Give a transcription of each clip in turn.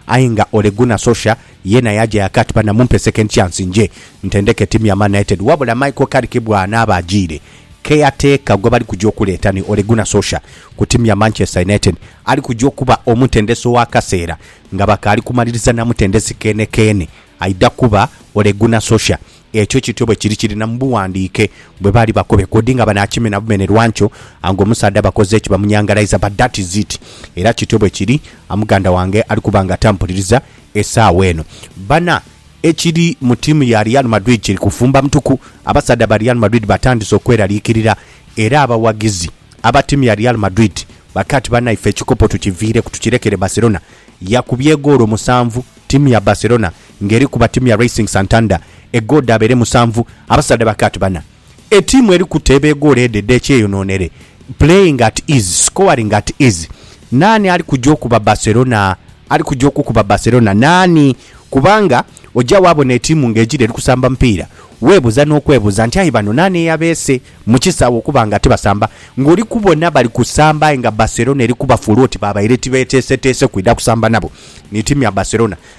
Aye nga Ole Gunnar Solskjaer yeena yaaja yaka ati, Bana mumpe second chance nje ntendeke ttiimu ya Man United. Wabula Michael Carrick bw'anaaba ajiire, keyateeka gwe bali kuja okuleeta ni Ole Gunnar Solskjaer ku ttiimu ya Manchester United ali kuja okuba omutendesi ow'akaseera nga bakaali kumaliriza na mutendesi keene keene aidha kuba Ole Gunnar Solskjaer. Ekyo kityo bwe kiri kiri na mu bughandiike. Bwe baali bakobe kodi nga banaakimena bumene lwa nkyo, ango omusaadha bakoze ki? Bamunyangalaiza. But that is it. Era kityo bwe kiri. A muganda wange ali kuba nga tampuliriza esaawa eno. Bana, ekiri mu tiimu ya Real Madrid kiri kufumba mutuku. Abasaadha ba Real Madrid batandise okweraliikirira. Era abawagizi aba tiimu ya Real Madrid bakaaba ati, Banaife, ekikopo tukiviireku tukirekere Barcelona. Yakubye egoolo musanvu tiimu ya Barcelona. Ng'eriku Batimia Racing Santander egoodi abeere musanvu, abasaadha ba Kat bana. Etiimu eri kuteeba egoolo edho edh'ekyeyonoonere, playing at ease, scoring at ease. Naani ali kuja okuba Barcelona? Ali kuja okukuba Barcelona naani? Kubanga oja waabona etiimu ng'egira eri kusamba mupiira, weebuza n'okwebuza nti aye bano naani eyabeese mu kisaawe okuba nga tibasamba? Ng'oli kubona bali kusamba aye nga Barcelona eri kubafuula oti babaire tibeeteeseteese kwidha kusamba nabo. Ni tiimu ya Barcelona.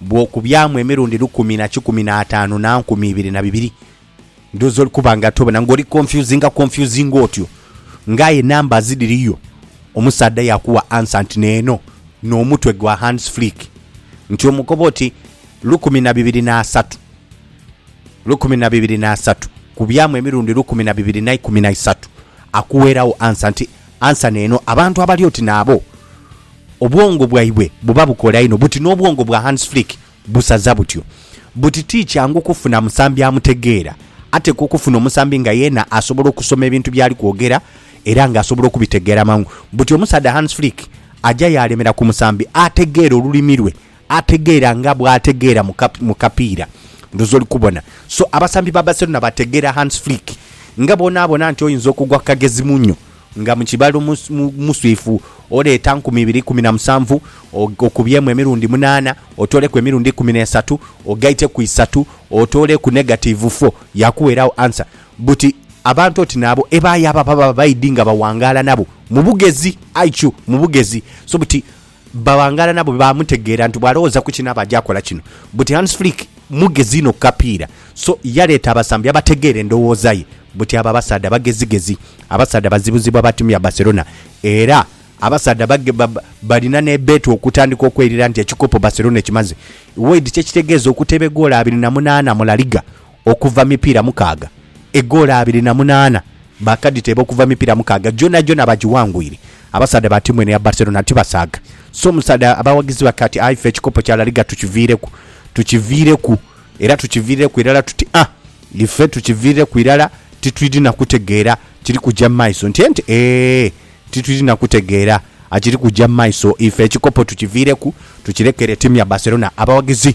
bw'okubyamu emirundi lukumi na kikumi na ataanu na nkumi ibiri na bibiri, ndhoozi oli kuba nga tobona, nga oli konfyuzinga konfyuzinga otyo. Nga aye numbers dhiriyo, omusaadha yaakuwa ansa nti n'eno, n'omutwe gwa Hans Flick, nti omukoba oti lukumi na bibiri na asatu. Lukumi na bibiri na asatu kubyamu emirundi lukumi na bibiri na ikumi na isatu, akuweeragho ansa nti Ansa n'eno, abantu abali oti naabo obwongo bwaibwe buba bukola inho buti n'obwongo bwa Hans Flick busaza butyo buti ti kyangu kufuna musambi amutegeera. Atekwa okufuna omusambi nga yeena asobola okusoma ebintu by'ali kwogera era nga asobola okubitegeera mangu. Buti omusaadha Hans Flick aja yaalemera ku musambi ategeera olulimi lwe. Ategeera nga bwategeera mu kapiira ndhoozi oli kubona. So abasambi ba Barcelona bategeera Hans Flick nga bw'onaabona nti oyinza okugwa ku kagezi muno nga mu kibalo muswiifu oleeta nkumi ibiri ikumi na musanvu okubyemu emirundi munaana otooleku emirundi ikumi n'esatu ogaite ku isatu otooleku negatiivu fo yaakuweeraagho ansa buti abantu oti naabo ebaayaba baba baidhi nga bawangaala nabo mu bugezi, IQ, mu bugezi. So buti Baghangala nabo baamutegeera nti bw'alowooza ku kinaaba aja kola kino. Buti Hans Flick mugezi inho ku kapiira, so yaleeta abasambi abategeera endowooza ye. Buti abo abasaadha bagezigezi, abasaadha bazibuzibwa ba tiimu ya Barcelona era abasaadha balina n'ebbeta okutandika okwelira nti ekikopo Barcelona ekimaze. Wade, kyekitegeeza okuteba egoolo abiri na munaana mu La Liga okuva mipiira mukaaga, egoolo abiri na munaana baakadhiteeba okuva mipiira mukaaga, gyonagyona bagiwangwire. Abasaadha ba tiimu eno eya Barcelona tibasaaga, so omusaadha abawagizi bake ati, Aye ife ekikopo kya La Liga tukiviireku, tukiviireku era tukiviireku irala tuti a Ife tukiviireku irala, titwidhi na kutegeera kiri kugya mu maiso. Nti enti, Eeh, titwidhi na kutegeera kiri kugya mu maiso. Ife ekikopo tukiviireku, tukirekere tiimu ya Barcelona. Abawagizi.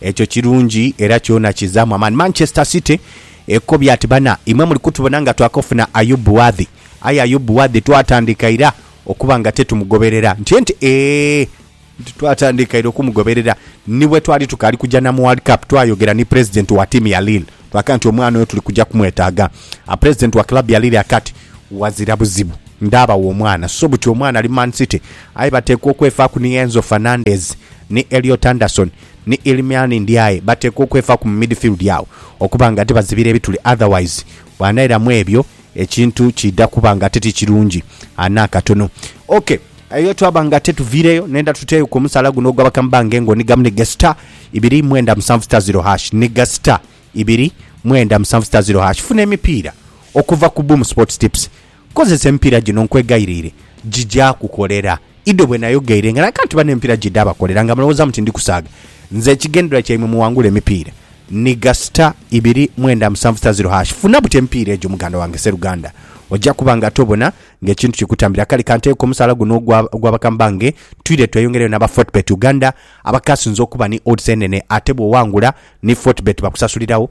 Ekyo kirungi era kyona kizaamu amaani. Manchester City ekobye ati, Bana imwe muli kutubona nga twakofuna Ayub Wadhi, aye Ayub Wadhi twatandika ira okuba nga tetumugoberera. Ntye nti, Ee, nti twatandika ira okumugoberera. Ni bwe twali tukaali kuja na mu World Cup, twayogera ni pulezidenti wa tiimu ya Lille twaka nti omwana oyo tuli kuja kumwetaaga. Pulezidenti wa club ya Lille aka ati, Wazira buzibu ndaabawo omwana. So buti omwana ali mu Man City, aye bateekwa okwefaaku ni Enzo Fernandez ni Elliot Anderson ni Iliman Ndiaye bateekwa okwefaku mu midfield agho okuba nga tibazibira ebituli otherwise bwanaira mwebyo ekintu kiidha kuba nga titi kirungi n'akatono. Ok, eyo twaba nga tetuviireyo nenda tuteeyo ku omusaala guno ogwa Bakambba nga engo ni gamu ni ga star ibiri mwenda musanvu star zero hash ni ga star ibiri mwenda musanvu star zero hash. Funa emipiira okuva ku Boom Sports Tips Kozesa empiira gino nkwegayirire gija kukolera. Ido bwe nayogeire nga nalaga nti bano empiira gidhabakolera nga mulowoozaamu ti ndi kusaaga. Nze ekigendererwa kyaimwe muwangule emipiira. Nhiga star ibiri mwenda musanvu star zero hash funa buti emipiira egyo muganda wange Sseruganda. Oja kuba nga tobona ng'ekintu kikutambira. Kale kanteeku omusaala guno ogwa ogwa bakama bange twire tweyongereyo n'aba Fortebet Uganda abakaasinze okuba ni odds enene ate bw'owangula ni Fortebet bakusasulirawo